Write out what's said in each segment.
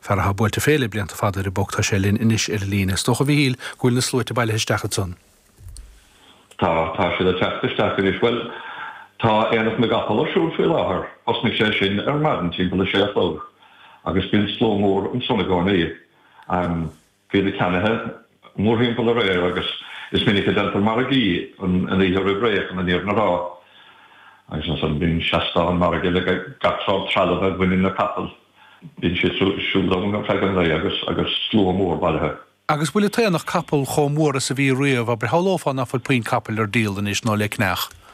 Fear atá buailte fé le blianta fada ar an bPoc, tá sé linn anois ar an líne. Is dócha, a Mhíchíl, go bhfuil na sluaite bailithe isteach ansan? Tá, tá siad ag teacht isteach anois. Bhuel, tá Aonach na gCapall ar siúl faoi láthair, thosnaigh sé sin ar maidin timpeall a sé a chlog agus bíonn slua mór ansan i gcónaí. Bhí na ceannaithe mórthimpeall aréir agus is minic a déantar margaí an oíche roimh ré chun an fhírinne a rá. Agus ansan bíonn seastán margaidh le gach sórt trealamh a bhaineann le capaill. Bíonn siad siúd ann ar feadh an lae agus slua mór bailithe. Agus bhfuil an t-aonach capall chomh mór is a bhí riamh, abair? Shamhlófá nach bhfuil puinn capaill ar díol anois, nó le ceannach.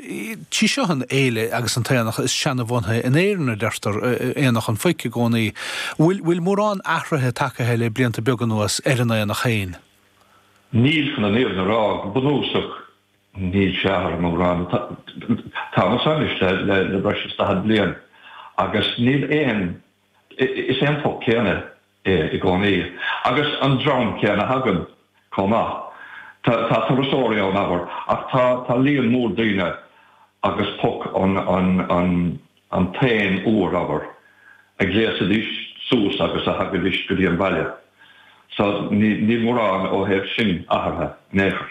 Sí seo an fhéile agus an t-aonach is seanabhunaithe in Éirinn, a deirtear, Aonach an Phoic i gcónaí. Bhfuil bhfuil mórán athruithe tagtha le blianta beaga anuas ar an aonach féin? Níl, chun an fhírinne a rá, go bunúsach níl sé athraithe mórán. Táimid seo anois le le le breis is daichead bliain agus níl aon is é an Poc céanna. é i gcónaí. Agus an dream céanna againn chomh maith. Tá turasóirí ann, abair, ach tá líon mór daoine agus Poc an t-aon uair, abair, a ghléasaidís suas agus a thagaidís go dtí an baile. So níl mórán ó thaobh sin athraithe in aon chor.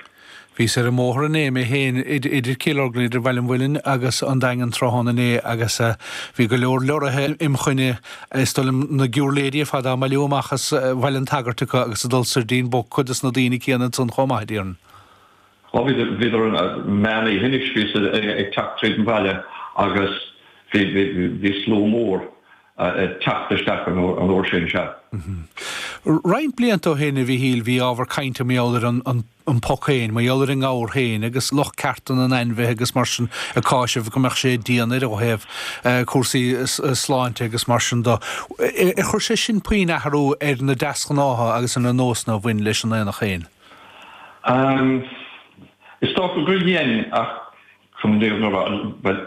Bhíos ar an mbóthar inné mé féin idir Chill Orglan, idir Bhaile an Mhuilinn agus an Daingean tráthnóna inné agus bhí go leor leoraithe im choinne, is dóigh liom na giúrléidí ar fad á mbailiú amach as Bhaile an tSagairt acu agus ag dul soir dtín bPoc, cuid dos na daoine céanna ansan chomh maith, a deirim. Á, bhí, d'réir meán oíche anois, bhíos ag teacht tríd an bhaile agus bhí slua mór. ag teacht isteach an uair sin, sea. Ahem. Roinnt blianta ó shin, a Mhíchíl, bhí ábhar cainte mar gheall ar an, an, an poc féin, mar gheall ar an ngabhar féin agus lucht cearta na n-ainmhithe agus mar sin ag cásamh go mbeadh sé dian air ó thaobh cúrsaí sláinte agus mar sin de. Ar chuir sé sin puinn athrú ar na deasghnátha agus ar na nósanna a bhain leis an aonach féin? Ahem. Is dócha gur dhein ach, chun an fhírinne a rá, bhuel,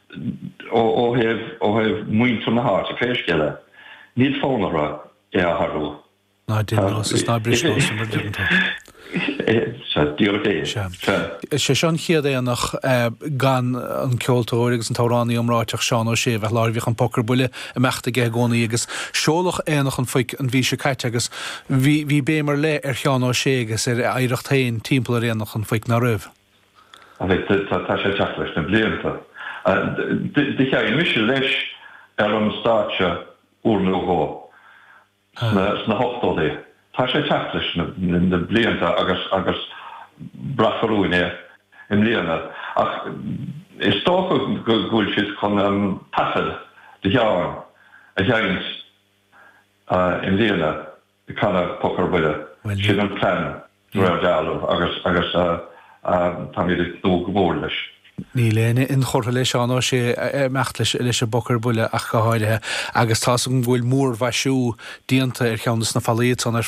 ó thaobh mhuintir na háite, pé scéal é. Níl fonn orthu é a athrú. Ná déan nós is ná bris nós, mar a deireann tú. Sea, díreach é. Sea. Sea. Is é seo an chéad aonach gan an ceoltóir agus an t-amhránaí iomráiteach Seán Ó Sé a bheith láithreach. Bhíodh an Poc ar Buile ag imeacht aige i gcónaí agus seoladh Aonach an Phoic an mhí seo caite agus bhí béim ar leith ar Sheán Ó Sé agus ar a oidhreacht féin timpeall ar Aonach an Phoic, ná raibh? Tá sé ag teacht leis na blianta. Do sheinn mise leis ar an stáitse uair nó dhó sna hochtóidí. Tá sé ag teacht leis na blianta agus braithfear uainn é i mbliana. Ach is dócha go bhfuil siad chun an taifead de Sheán a sheinnt i mbliana. ag canadh Poc ar Buile. Sin an plean de réir dealraimh agus táimid ag tnúth go mór leis. Níl éinne inchurtha le Seán Ó Sé ag imeacht leis an bPoc ar Buile ach go háirithe agus tá's agam go bhfuil múrmhaisiú déanta ar cheann de na fallaí atá ar